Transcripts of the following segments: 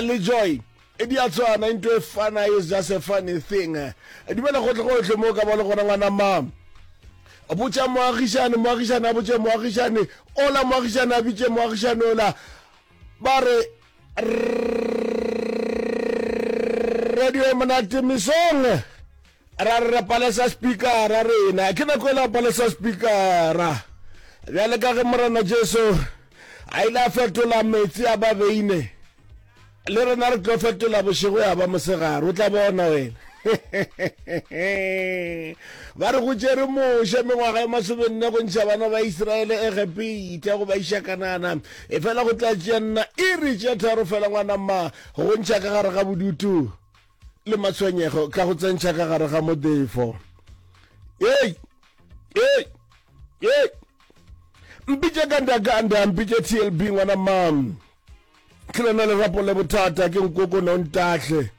le joy e di a tswana into e fana is just a funny thing dumela gotle gotlhe mo ka ba le gona ngwana ma botša moagišane moagišane a botše moagišane ola moagišane a bitše moagišane ola ba re radio e monate mesong ra re palesa spikara rena ke nako ela palesa spikara bjale ka ge morena jesu a ile a fetola metsi a ba beine le rena re tlo fetola bošego ya ba mosegare o tla bona wena ba re go tšere moše mengwaga ya masobenne go ntšha bana ba iseraele egepita go ba iša kanana e fela go tla tšea nna iri tše tharo fela ngwanama go ntšha ka gare ga bodutu le matshwenyego ka go tsentšha ka gare ga modefo ei ei ei mpitše ka ndakanda mpitše tlb ngwana mam ke lona lerapo le bothata ke nkokona o ntahle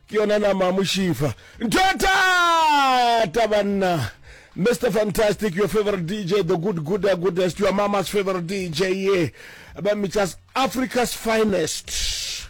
ke yona nama mošifa ntho ya thata banna Mr. Fantastic, your favorite DJ, the good, good, uh, goodest, your mama's favorite DJ, yeah. But me just Africa's finest.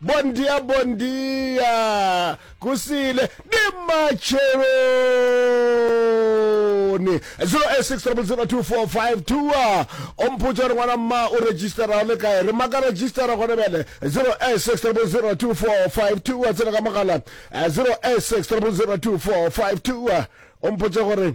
Bon dia bon dia Kusile ni matsheloni 06002452 o mpotša gore ngwana mma o registera le kae re maka registera gone bjale 06002452 tsena ka mogala 06002452 o mpotša gore